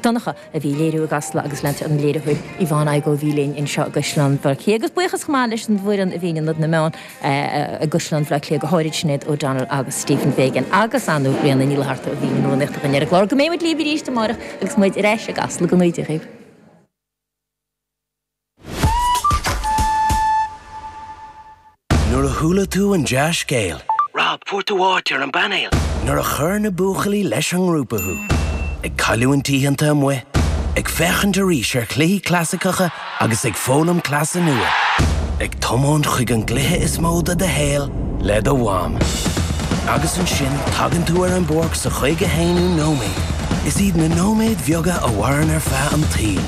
Donncha, a bhí ag léiriú i gCasla agus lenár an léiritheoir Yvonne Aigo a bhí linn anseo i gCaisleán Bhaile Átha Cliath agus buíochas chomh maith leis an bhfoireann a bhí in Ionad na Meán i gCaisleán Bhaile Átha Cliath, go háirid Sinéad O'Donnell agus Stephen Fagan agus Annamaria Ní Fhlatharta a bhí ina rúnaíocht againn ar an gclár. Go mbeidh muid libh arís amárach agus muid ar ais i gCasla go dtige. Nuair a chuala tú an dea-scéal. Rob, fuair tú áit ar an bpainéal! Nuair a chuir na buachaillí leis an ngrúpa thú. Ag cailliúint oícheanta amuigh. Ag féachaint arís ar chluichí clasaiceacha agus ag foghlaim cleasa nua. Ag tiomáint chuig an gcluiche is mó de do shaol le do mham. Agus ansin tagann tú ar an bpáirc sa chaoga haonú nóiméad. Is iad na nóiméid bheaga a mhaireann ar feadh an tsaoil.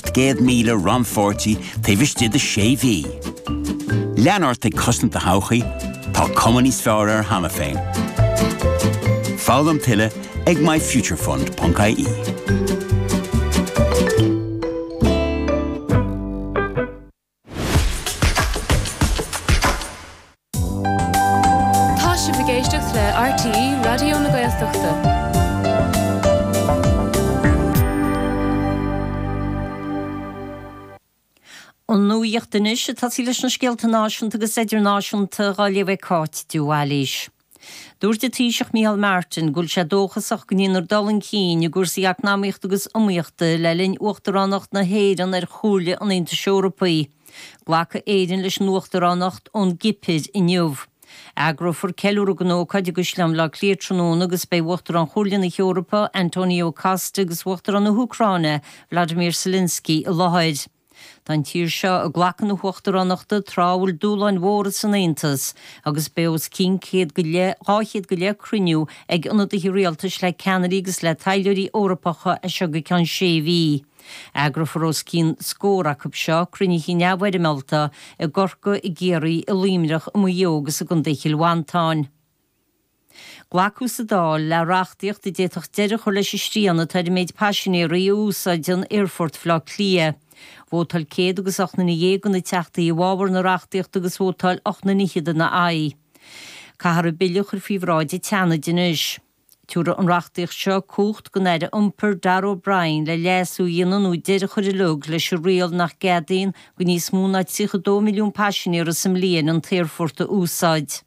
Céad míle rannpháirtí taobh istigh de sé mhí? Lean ort ag cosaint do thodhchaí, tá cuma níos fearr air cheana féin. Foghlaim tuilleadh ag myfuturefund.ie. Tá sibh ag éisteacht le RTÉ Raidió na Gaeltachta. An nuacht anois, ag tosaí leis na scéalta náisiúnta agus idirnáisiúnta dhá léamh ag Cáit de Bhailís. Dúirt an Taoiseach Micheál Martin go bhfuil sé dóchasach go ndéanfar dul chun cinn i gcúrsaí eacnamaíochta agus iomaíochta le linn Uachtaránacht na hÉireann ar Chomhairle an Aontais Eorpaigh. Glacfaidh Éirinn leis an Uachtaránacht ón gCipir inniu. Eagrófar ceiliúradh don ócáid i gCaisleán Bhaile Átha Cliath tráthnóna agus beidh Uachtarán Chomhairle na hEorpa, Antonio Costa agus Uachtarán na hÚcráine, Volodymyr Zelensky i láthair. Tá an tír seo ag glacadh na hUachtaránachta tráth a bhfuil dúshláin mhóra don Aontas agus beidh os cionn céad go leith, dhá chéad go leith, cruinniú ag ionadaithe rialtais le ceannairí agus le taidhleoirí Eorpacha as seo go ceann sé mhí. Eagrófar os cionn scór acu seo, cruinnithe neamhfhoirmeálta, i gCorcaigh, i gCiarraí, i Luimneach, i Maigh Eo agus i gContae Chill Mhantáin. Glacadh sa Dáil le reachtaíocht a d'fhéadfadh deireadh a chur leis an srian atá ar an méid paisinéirí a úsáideann Aerfort Bhleá Cliath. Vótáil 118 nduine de na Teachtaí i bhfabhar na reachtaíochta agus vótáil 28 nduine ina haghaidh. Caithfear an Bille a chur faoi bhráid an tSeanaid anois. Tiúrfaidh an reachtaíocht seo cumhacht don Aire Iompair, Darragh O'Brien, le leasú a dhéanamh nó deireadh a chur uilig leis an riail nach gceadaíonn do níos mó ná 32 milliún paisinéir sa mbliain an t-aerfort a úsáid.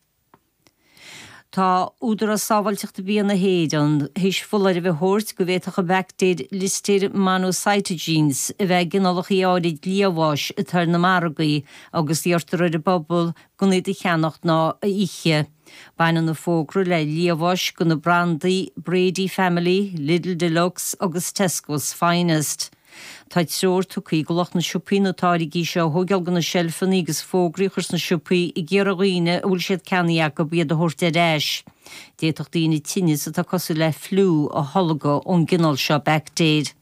Tá Údarás Sábháilteachta Bia na hÉireann tar éis foláireamh a thabhairt go bhféadfadh an bhaictéir Listeir monocytogenes a bheith i gcineálacha áirid liamháis atá ar na margaí agus iarrtar ar an bpobal gan iad a cheannacht ná a ithe. Baineann an fógra le liamháis leis na brandaí Brady Family, Lidl Deluxe agus Tesco's Finest. Tá treoir tugtha ag lucht na siopaí na táirgí seo a thóigeáil dho na seilfeanna agus fógraí a chur sna siopaí ag iarraidh ar dhaoine a bhfuil siad ceannaithe acu iad a thabhairt ar ais. D'fhéadfadh daoine tinneas atá cosúil le fliú a tholgadh ón gcineál seo baictéir.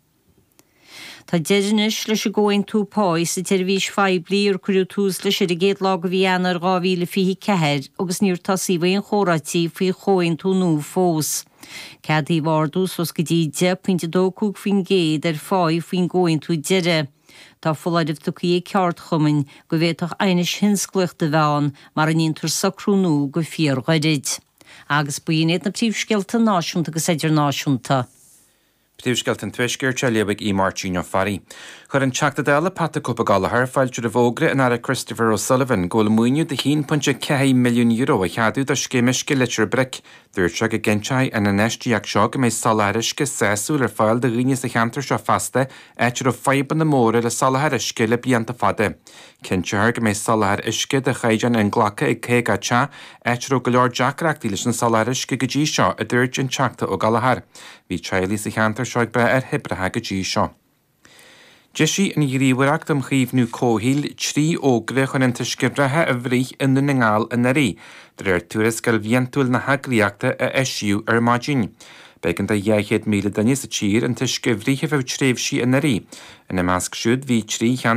Tá deireadh anois leis an gcomhaontú páí sa tseirbhís phoiblí ar cuireadh tús leis ar an gcéad lá de mhí Eanáir 2024 agus níor tosaíodh aon chomhráití faoi chomhaontú nua fós. Ceadaíodh ardú suas go dtí 10.25% ar phá faoin gcomhaontú deiridh. Tá foláireamh tugtha ag ceardchumainn go bhféadfadh aighnis thionsclaíochta a bheith ann mara ndéantar socrú nua go fíorghairid. Agus b'in iad na príomhscéalta náisiúnta agus idirnáisiúnta. Príomhscéalta an Tuaiscirt á léamh ag Aodh Máirtín Ó Fearraigh. Chuir an Teachta Dála Pat 'The Cope' Gallagher fáilte roimh fhógra an Aire Christopher O'Sullivan go bhfuil maoiniú de €1.4 milliún á cheadú do scéim uisce Leitir Bric. Dúirt sé go gcinnteoidh an infheistíocht seo go mbeidh soláthar uisce sásúil ar fáil do dhaoine sa cheantar seo feasta, áit a raibh fadhbanna móra le soláthar uisce le blianta fada. Cinnteofar go mbeidh soláthar uisce de chaighdeán inghlactha ag 50 teach, áit a raibh go leor deacrachtaí leis an soláthar uisce go dtí seo, a dúirt an Teachta Ó Gallchóir. Bhí teaghlaigh sa cheantar seo ag brath ar thoibreacha go dtí seo. D'eisigh an Ghníomhaireacht um Chaomhnú Comhshaoil trí fhógra chun an t-uisce reatha a bhruith i nDún na nGall anuraidh, de réir tuarascáil bhliantúil na heagraíochta a eisíodh ar maidin. B'éigean do 200,000 duine sa tír an t-uisce a bhruith ar feadh tréimhsí anuraidh. Ina measc siúd bhí trí